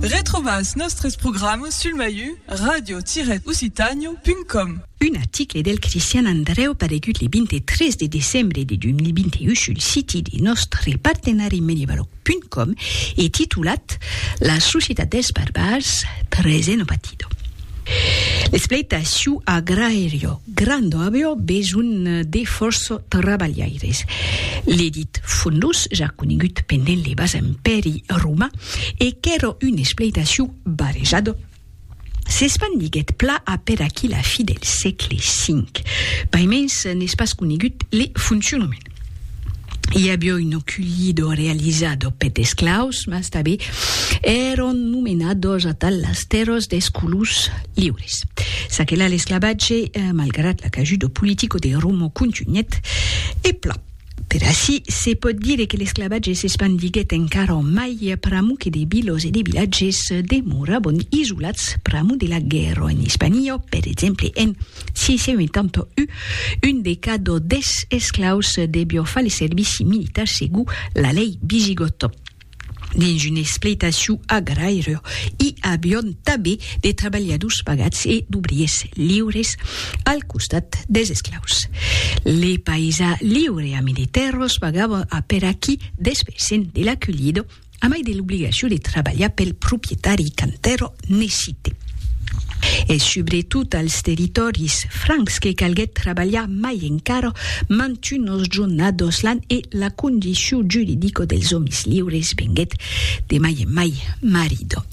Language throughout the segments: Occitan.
Retrobas nòstres programas sul maiu radio-occitània.com. Un article del Cristian Andrèu paregut le 23 de decembre de 2021 sul siti de nòstre partenari Medievaloc.com e titulat La societat dels barbars, present o patidor. L'esplèita suu agraèrio. Grando avió besonh de fòrça trabalhaires. Ledit fondus ja conegut pendent le bas empèri romà e qu'èra un espleitaciu barejat, s'espandiguèt pla a per aqui la fi del sègle V. Paimens n'es pas conegut le foncionament. i avió un oculido realizado pet esclaus, mas tabé èron nomenados atal las tèrras des colons liures. S'aquela l'esclavatge, malgrat l'acajudo politico de Romo contunhèt e plan. Per ací, se pòt dire que l'esclavatge s'espandiguèt encara mai pr'amor que de vilos e de vilatges demorabon isolats pr'amor de la guèrra en Hispania, per exemple en. Si se un tanto u un de cada des esclaus debió far le servici militar segur la lei visigota. Dins un espleitaciu agraire i avión tabé de trabalhadors pagats e d'obriers liures al costat des esclaus. Le paisà liure a militèros pagava aperaquí despessen de la culhida, A mai de l'obligacion de trabalhar pel proprietari qu'Antero necite. Es subretot als territòris francs que calguèt trabalhar mai encara mantunt nos jornados lan e la condicion juridica dels òmis liures venguèt de mai en mai marida.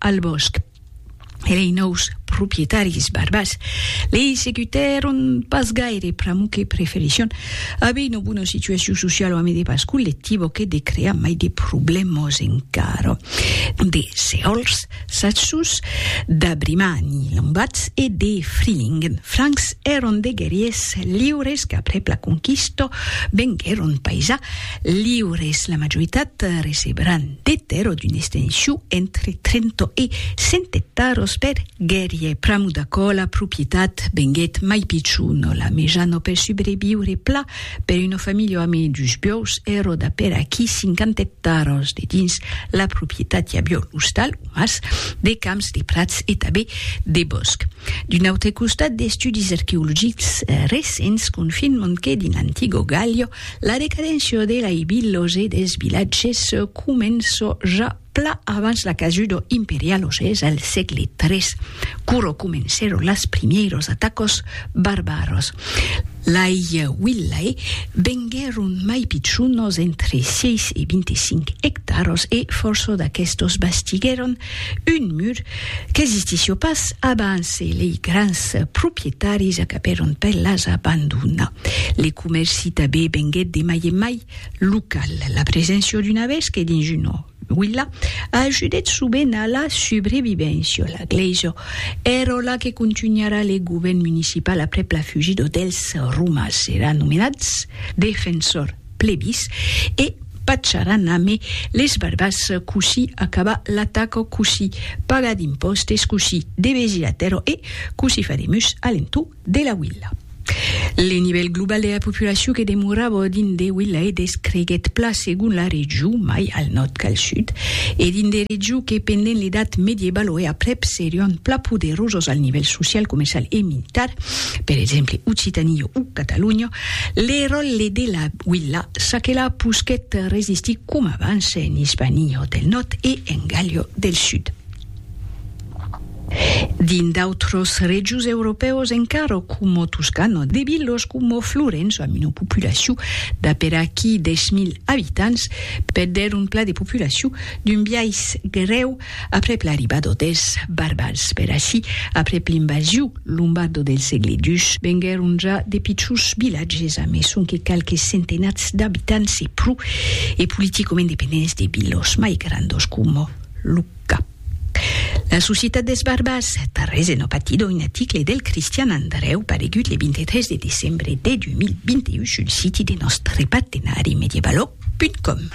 al bòsc, e lei nòus proprietaris barbas lei segutèron pas gaire pr'amor que preferisson aver una bona situacion sociala amé de pas collectiva que de crear mai de problèmas encara. De sehòls saços, d'abrimani lambats e de frilingen francs èron de guerriers liures qu'aprèp la conquista venguèron paisà liures, la majoritat recebran, de tèrra d'un estenshou entre 30 e 100 ectaros per guerrier pramo d'aquò la propietat venguèt mai pichona la mejana per subreviure pla per una familha amé dus biòus eroda per aquí 50 ectaros de dins la propietat i avió l'ostal o mas de camps de prats e tabé de bòsc d'un autre costat d'estudis arqueologics recents confirman que dins l'antiga galha La decadencia de l'aibilose des vilatges començò ja pla abans la casudo imperialose al sègle tres, quoro comencèro las primièros atacos barbaros. Lai villae venguèron mai pichonos entre 6 e 25 ectaros e fòrço d'aquestos bastiguèron Un mur qu'existissió pas abans e lei grans proprietaris acabèron per las abandonar. Le comèrci tabé venguèt de mai en mai local. La preséncia d'una vésca dins una vila ajudèt sovent a la subrevivéncia. La glèisa èra la que contunharà le govèrn municipal aprèp la fugida dels Romas. Èran nomenats defensors. plebis, e pacharan ame les barbas cossí acaba l'ataca, cossí paga d'impòstes, cossí devesi la tèrra e cossí fa de mus a l'entorn de la Willa. Le nivèl global de la populacion que demorava dins de Willa e descreguèt plan segon la region, mai al nòrd qu'al sud, e dins de regions que pendent l'edat medievalo e aprèp serián plan poderosas al nivèl social, comercial e militar, per exemple Occitania o Catalonha, Le ròtle de la Willa saquelà posquèt resistir coma abans en Ispanio del Nòrd e en Gàlio del Sud. Dins d'autros regius europèus encara coma Toscana, de vilas coma Florença amb una populacion d'aperaquí 10.000 abitants perdèron plan de populacion d'un biais grèu, Aprèp l'arribada d'autèls barbars per ací, aprèp l'invasion lombardo del sègle xii, venguèron ja de pichons vilatges a mai sonque qualques centenats d'abitants e pro, e politicament dependents de vilos mai grandos coma Lucca. La societat dels barbars, tarrés en Opatido, un aticle del Cristian Andrèu paregut le 23 de decembre de 2021 sul siti de nòstre partenari medievalog.com.